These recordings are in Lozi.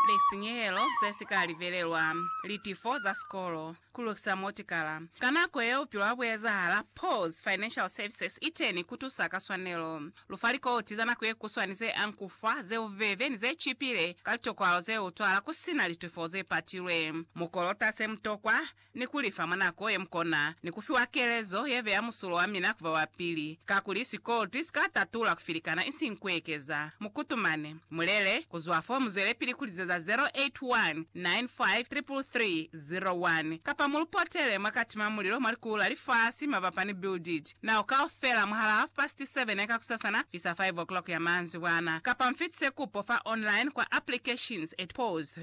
lisinyehelo ze si ka libelelwa, litifo za sikolo, ku lukisa motikala. Ka nako yeo bupilo ha bu ezahala. Paul's Financial Services i teni ku tusa ka swanelo. Lu fa likoti za nako ye kuswani ze anku fa, ze bubebe, ni ze cipile ka litokwalo ze utwala ku si na litifo ze patilwe. Mu kolota se mu tokwa, ni ku lifa mwa nako ye mukona, ni ku fiwa kelezo ye beya musulo wa mina ku ba wa pili, kakuli sikolti si ka tatula ku filikana isiñi ku ekeza. Mu kutumane. Mu lele, ku zwa fo mu zwelepili ku lizeza 0819533301, kapa mu lu potele mwa kati mwa mulilo mwa likulu la lifasi mabapa ni Build It Now kaufela mwahalaa half past seven ya kakusasana kuisa five o'clock ya manzibwana, kapa mu fitise kupo fa online kwa applications at pause.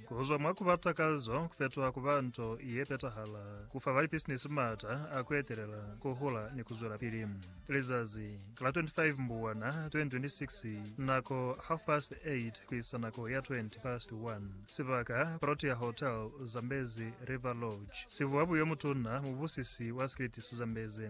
Ku zwa mwa ku ba takazo ku fetoha ku ba nto ye petahala, ku fa balipisinisi m'ata a ku etelela, ku hula, ni ku zwelapili. Lizazi la 25 Mbubwana 2026, nako half past 8 ku isa nako ya 20 past 1, sibaka, Protea Hotel, Zambezi River Lodge, Sibuabu yo Mutuna, mubusisi wa sikiliti sa Zambezi.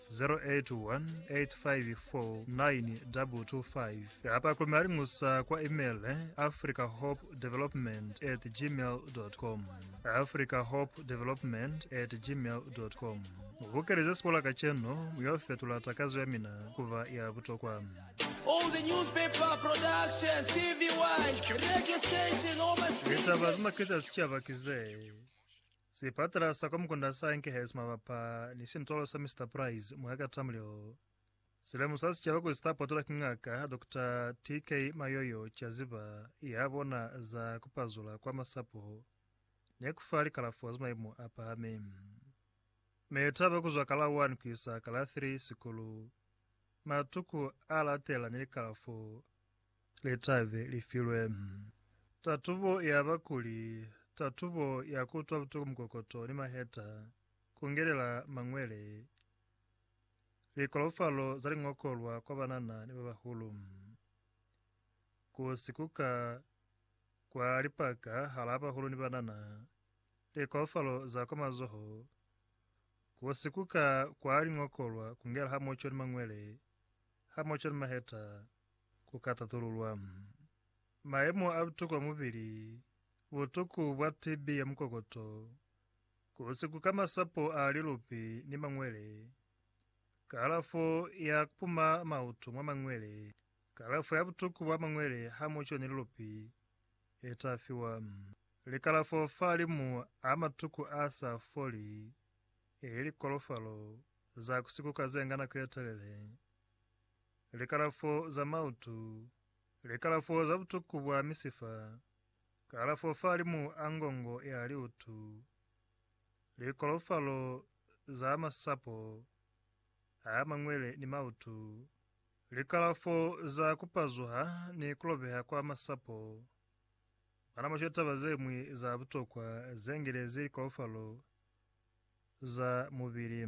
0818549225 kapa ku malingusa kwa email africahopedevelopment at gmail.com africahopedevelopment at gmail.com Bukeleze sikola kacenu yo fetula takazo ya mina kuba ya butokwa. All the newspaper production, TVY, radio station, all my Litaba zima kiza sichaba kize. Sipatela sa kwa mukunda sa Enkhuises mabapa ni sintolo sa Mister Price mwa Katamlilo si lemusa sicaba kuli si ta potolwa ki Ngaka Dokota TK. Mayoyo ca ziba ya bona za ku pazula kwa masapo ni ku fa likalafo za maimo a pahameng. Meli taba ku zwa ka la 1 ku isa ka la 3 sikulu, matuku a latelela ni likalafo litabe li filwe. Tatubo ya ba kuli tatubo ya ku utwa butuku mukokoto ni maheta, ku ngelela mañwele, likolofalo za liñokolwa kwa banana ni ba bahulu, ku si kuka kwa lipaka halaa bahulu ni banana, likolofalo za kwa mazoho, ku si kuka kwa liñokolwa ku ngela hamoco ni mañwele, hamoco ni maheta, Ku ka tatululwa mayemo a butuku a mubili, butuku bwa TB ya mukokoto, ku sikuka masapo a lilupi ni mangwele, kalafo ya ku puma mautu mwa mangwele, kalafo ya butuku bwa mangwele ha mu coni lilupi, i ta fiwa. Likalafo fahalimu a matuku a sa foli, ili kolofalo za ku sikuka ze nga nako ye telele. likalafo za mautu, likalafo za butuku bwa misifa, kalafo fahalimu a ngongo ya liutu, likolofalo za masapo a mangwele ni mautu, likalafo za kupazuha ni kulobeha kwa masapo. Mwa nama cwa taba ze ñwi za butokwa ze ngelezi likolofalo za mubili.